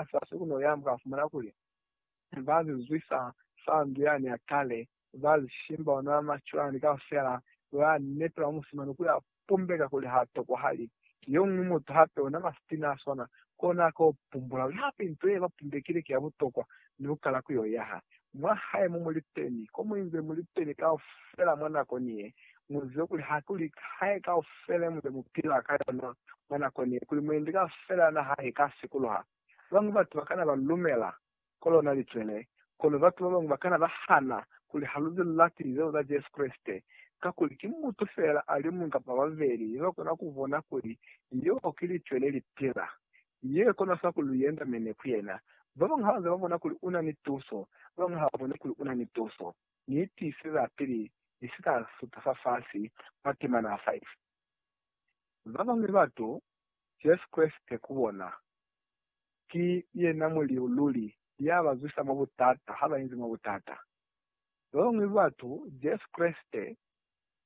Asasi ku no yamba ka fumana kuli, ba zizwisa fa ndu ya ne a kale, ba lishimba ona macwani kaufela, ba nepela musimani ku ya pumbeka kuli ha tokwahali. Yo ñwi mutu hape ona masitina a swana, kona a ka yo pumbula kuli hape nto ye ba pumbekile ki ya butokwa ni ku kala ku yo yaha. Mwa hae mo muli teni, ko mu inze muli teni kaufela mwa nako ni ye. Mu zibe kuli ha ku li hae kaufela ye mu nze mu pila ka yona mwa nako ni ye, kuli mwendi kaufela ya naha i ka sikuluha. Ba bañwi batu ba kana ba lumela ko lona licwele, kono batu ba bañwi ba kana ba hana kuli ha lu zi lati lizelo za Jesu Kreste. Kakuli ki mutu feela a li muñwi kapa babeli yo ba kona ku bona kuli leo ki licwele li pila. Ye kona sa kuli lu yenda mene ku yena. Ba bañwi ha ba ze ba bona kuli u na ni tuso, ba bañwi ha ba bone kuli u na ni tuso. Ni tiiseza pili ni si ka suta fa fasi mwa temana ya 5. Ba bañwi batu, Jesu Kreste ku bona, ki yena Muliu luli ya ba zwisa mwa butata ha ba inzi mwa butata. Ba bañwi batu, Jesu Kreste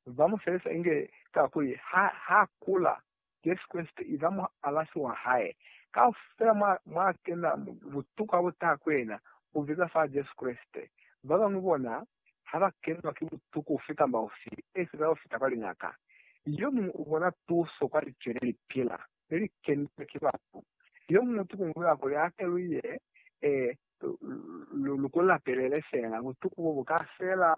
ba mu felisa inge kakuli ha kula Jesu Kreste iza mualasi wa hae. Kaufela mwa, mwa kena butuku ha bu taha ku yena, u biza fa Jesu Kreste. Ba bañwi bona, ha ba kenwa ki butuku ufi kamba ufi, e fita u fita kwa liñaka. Yo muñwi u bona tuso kwa Licwe le li pila, le li kenilwe ki batu. Yo muñwi ki ku nzula kuli a ke lu ye, e, lu, lu ku lapelele fela. Butuku bo bu ka fela,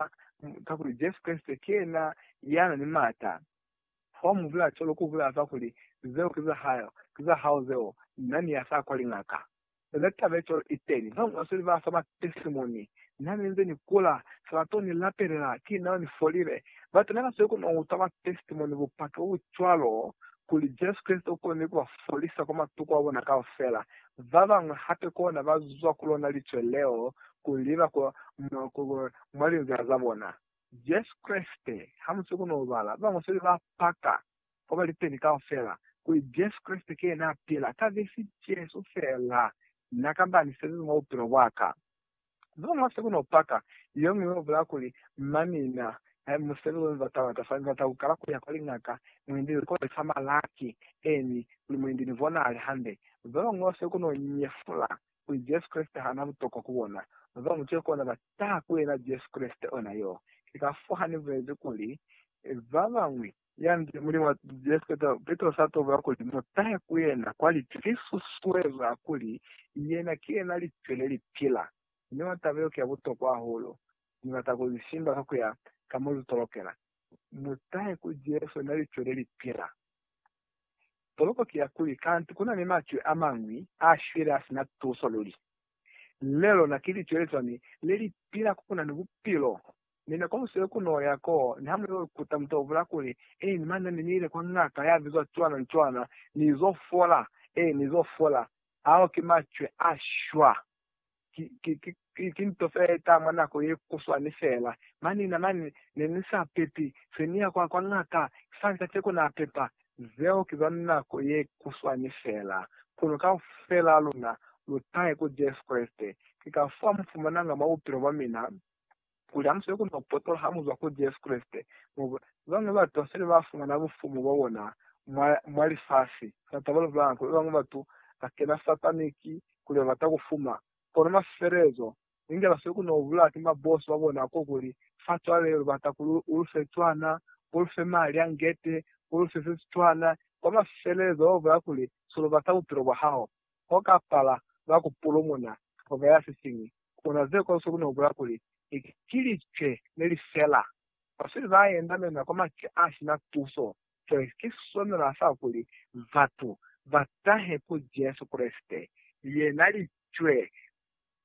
kakuli Jesu Kreste ki yena ya na ni m'ata. Ha u mu bulaa cwalo ku bulaza kuli, Zeo ki za hae, ki za hao zeo, na ni ya sa kwa lingaka. Ona taba ye cwalo i teli. Ba bañwi ba sweli ba fa ba tesimoni, Na ne nze ni kula, sa ba to ni lapelela, ki nao ni folile. Batu ne ba sweli ku no utwa ba tesimoni, bupaki bo bu cwalo, kuli Jesu Kreste u konile ku ba folisa kwa matuku a bona kaufela. Ba bañwi hape kona ba zwa ku lona licwe leo ku liba mwa linzila za bona. Jesu Kreste, ha mu si koni ku bala, ba bañwi se ba paka kwa ba liteni kaufela kuli Jesu Kreste ki yena a pila, ka vesi Jesu feela, na ka ba ni se liñwi mwa bupilo bwa ka. Ze bañwi ba si koni ku paka, ye ñwi yo bulaya kuli, Mma mina, he mu se luli nzata wa ka, fa ni bata ku kala ku ya kwa liñaka, mu endi ni kole fa malaki, eni, kuli mu endi ni bonahale hande. Ba bañwi ba si koni ku nyefula kuli Jesu Kreste ha na butokwa ku bona. Ba bañwi ki kona ba taha ku yena Jesu Kreste ona yo. Ki kafo ha ni bulezi kuli, Ba bañwi. Ya nde, Mulimu wa Jesu Kreste, Petrosi a tobula kuli, Mu tahe ku yena kwa lipyu. Ki susuezo ya kuli, Yena ki yena lipyu le li pila. Mi mwa taba yeo ki ya butokwa hahulu, ni bata ku li simba ka ku ya ka mo lu tolokela. Mu tahe ku Jesu, yena lipyu le li pila. Tolopo ki ya kuli kanti ku na ni macwe a mañwi a shwile a si na tuso luli. Le lona ki licwe le cwani le li pila ko ku na ni bupilo? Mi ne ko busile ku n'o ya koo ni ha mu y'o ikuta mutu a bula kuli, Eeni mane, ne ni ile kwa ngaka ya bizwa cwana ni cwana, ni z'o fola. Eeni, ni z'o fola. Ao ki macwe a shwa. ki nto se eta mwa nako ye kuswani fela. Mani na mani ne ni sa pepi, se ni ya kwa, kwa ngaka, sani kaceko na pepa. Zeo ki za nako ye kuswani fela. Kono kaufelaa luna lu tahe ku Jesu Kreste. Ki kafao mu fumananga mwa bupilo bwa mina. Kuli hamusile ku no potola ha muzwa ku Jesu Kreste, mo babañwi ba batu basele ba fumana bufumu bwa bona mwa, mwa lifasi. Fa taba lu lubanga kuli babañwi batu ba kena sataniki kuli ba bata ku fuma. Kono mwa sifelelezo, inge basweli ku no bulawa ki mabosi ba bona ko kuli, Fa cwale lu bata kuli u lu fe cwana, u lu fe mali a ngete, u lu fe se si cwana. Kwa mwa sifelelezo ba bulaya kuli, Si lu bata bupilo bwa hao. ho ka pala lwa ku pulumuna koka ya sisiñwi, kuna ze kosu ku no bula kuli, Ni ki licwe le li fela. Basweli ba yendamena kwa macwe a si na tuso. Cwale ki swanela sa kuli batu ba tahe ku Jesu Kreste, yena licwe le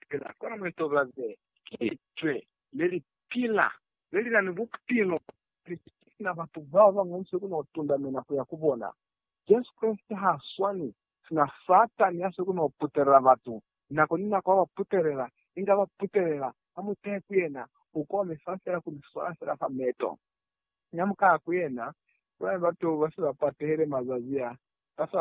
pila. Kono mu itobaze, ki licwe le li pila, le li na ni bupilo. Cwale ki sina batu bao ba bañwi se ku no tundamena ku ya ku bona. Jesu Kreste ha swani sina Satani ya soko no putelela batu, nako ni nako aba putelela, inge aba putelela, ha mu tehe ku yena, u komisa fela ku mi swala fela fa meto. Inge mu kaha ku yena, bulani batu ba se ba patehele mazazi a, ba se ba